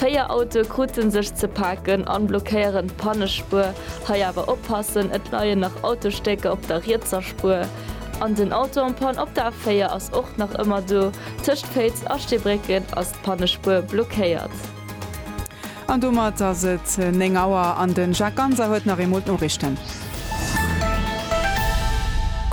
Véier Autoe krute sech ze paken an blockéieren d'Pannespuer. Hei awer oppassen, et leien nach Autostécker op der rietser Spuer. An den Auto en panne op der A4 ass och nach ëmmer do. Tëscht Féiz a Steebrécken ass d'Pannespuer blockéiert. An domat ass et 9 Auer an den Jacques Ganser huet nach eemol d'Noriichten.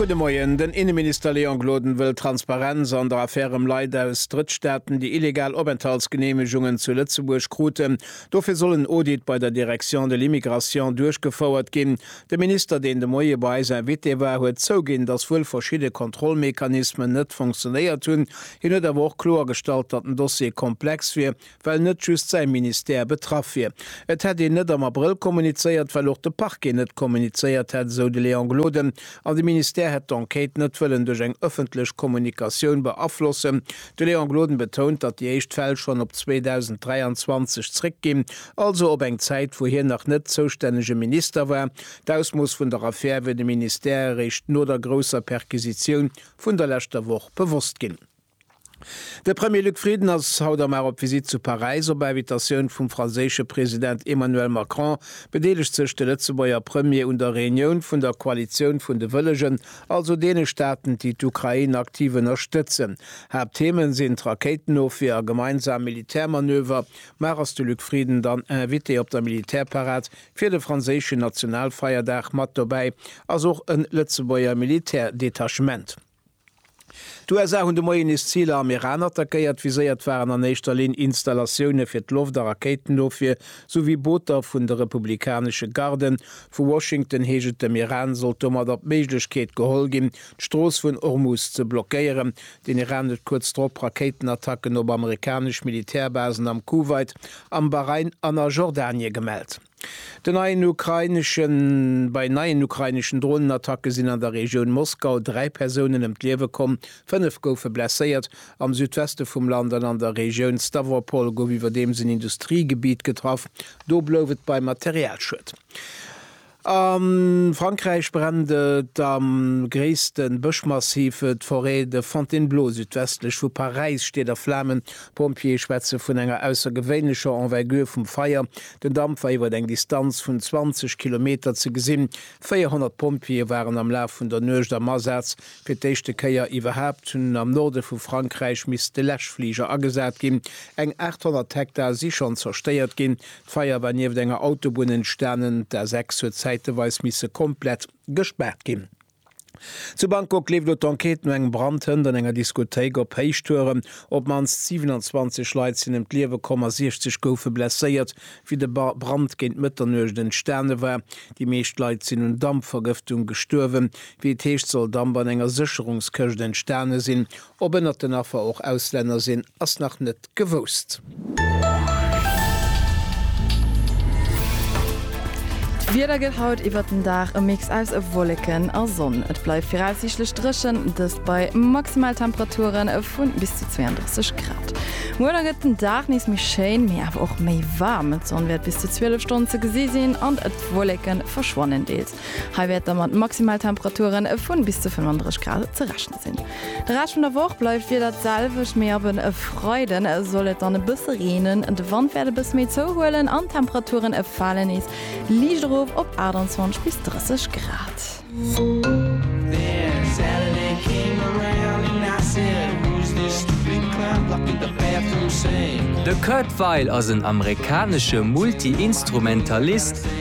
Gudde Moien. Den Inneminister Léon Gloden wëll Transparenz an der Affär ëm Leit aus Drëttstaaten, déi illegal Openthaltsgeneemegungen zu Lëtzebuerg kruten. Dofir soll en Audit bei der Direction de l'immigration duerchgefouert ginn. De Minister, deen de Moie bei eis Invité war, huet zouginn, datt wuel verschidde Kontrollmechanismen net funktionéiert hunn. Hien huet awer och kloergestallt, datt den Dossier komplex wier well net just säi Ministère betraff wier. Et hätt een net am Abrëll kommunizéiert, well och de Parquet net kommunizéiert hätt, esou de Léon Gloden, an de Ministère hätt d'Enquête net wëllen duerch eng ëffentlech Kommunikatioun beaflossen. De Léon Gloden betount, datt déi éischt Fäll schonn op 2023 zréckginn, also op eng Zäit, wou hien nach net zoustännege Minister war. D'Ausmooss vun der Affär wier dem Ministère eréischt no der grousser Perquisitioun vun der leschter Woch bewosst ginn. De Premier Luc Frieden ass haut am Ar op Visitt zu Paräis. Op Invitatioun vum franséische President Emmanuel Macron bedeelegt sech de Lëtzebuerger Premier un der Reunioun vun der Koalitioun vun de Wëllegen, also deene Staaten, déi d'Ukrain aktiv ënnerstëtzen. Haaptthemen sinn d'Rakéitenofwier a gemeinsam Militärmanöver. Mar ass de Luc Frieden dann Invité op der Militärparad fir de franséischen Nationalfeierdag? Mat dobäi ass och en Lëtzebuerger Militärdetachement. D'USA hunn de Moien nees Ziler am Iran attackéiert. Viséiert waren an éischter Linn Installatioune fir d'Loft a Rakéitenofwier, souwéi Booter vun de republikanesche Garden. Vu Washington heescht et, dem Iran sollt domadder d'Méiglechkeet geholl ginn, d'Strooss vun Ormuz ze blockéieren. Den Iran huet kuerz drop Rakéitenattacken op amerikanesch Militärbasen am Kuwait, am Bahrain an a Jordanie gemellt. Den neien ukraineschen Bei neien ukraineschen Dronenattacke sinn an der Regioun Moskau dräi Persounen ëm d'Liewe komm, fënnef goufe blesséiert. Am Südweste vum Land an an der Regioun Stawropol gouf iwwerdeems en Industriegebitt getraff. Do blouf et bei Materialschued. A Frankräich brennt et am gréisste Bëschmassiv, d'Forêt de Fontainebleau südwestlech vu Paräis steet a Flamen. D'Pompjeeë schwätze vun enger aussergewéinlecher Envergure vum Feier, Den Damp war iwwert eng Distanz vun 20 Kilometer ze gesinn. 400 Pompjeeë waren am Laf vun der Nuecht am Asaz. Fir d'éischte Kéier iwwerhaapt hunn am Norde vu Frankräich misste Läschfliger agesat ginn. Eng 800 Hektar si schonn zerstéiert ginn. D'Feier war nieft enger Autobunn entstanen. D'A6 huet zäiteweis misse komplett gespaart ginn. Zu Bangkok leeft elo d'Enquête no engem Brand. Hënt an enger Diskothéik op Héichtuerem. Op d'mannst 27 Leit sinn ëm d'Liewe komm a 60 goufe blesséiert, wéi de Brand géint Mëtternuecht entstane war. Déi meescht Leit sinn un Dampvergëftung gestuerwen. Wéi et heescht, soll Damp an enger Sécherungskëscht entstane sinn. Ob ënnert den Affer och Auslänner sinn, ass nach net gewousst. D'Wieder gëtt haut iwwert den Dag e Mix aus Wolleken a Sonn. Et bleift viraussiichtlech dréchen, dëst bei Maximaltemperature vu bis zu 32 Grad. Muer da gëtt den Dag nees méi schéin, mee awer och méi waarm. D'Sonn wäert bis zu 12 Stonnen ze gesi sinn an d'Wolleke verschwannen deels. Hei wäert da mat Maximaltemperaturen vun bis zu 35 Grad ze rechne sinn. De Rescht vun der Woch bleift d'Wieder d'selwecht, mee ab e Freide soll et dann e bësse reenen. De Wand wäert e bësse méi zouhuelen an d'Temperaturen fale nees liicht erof op 28 bis 30 Grad. De Kurt Weill ass en amerikanesche Multi-Instrumentalist.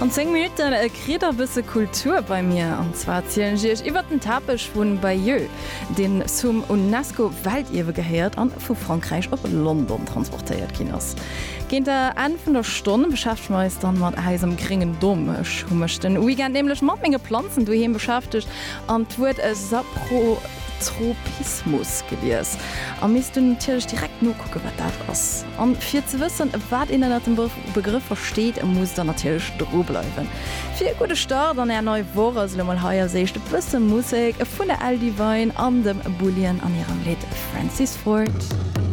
An 10 Minutten kritt der bësse Kultur bei mir. An zwar zielen ech Iech iwwert den Tapech vu Bayeux, deen zum UNESCO-Weltierwe gehéiert a vu Frankräich op London transportéiert ginn ass. Géint der Enn vun der Stonn beschäftege mer eis dann mat eisem gréngen Dom. Ech hu mech den Weekend nämlech mat menge Planzen doheem beschäftegt an d'Wuert Saprotropismus gelies a misst dunn natierlech direkt nokucken, wat dat ass. An fir ze wëssen, wat een ënnert dem Begrëff versteet, musst der natierlech dru bleiwen. Fir e gudde Start an är nei Woch ass elo mol hei als éischt e bësse Musek vun der L. Devine an dem Bullion an hirem Lidd Francis Ford.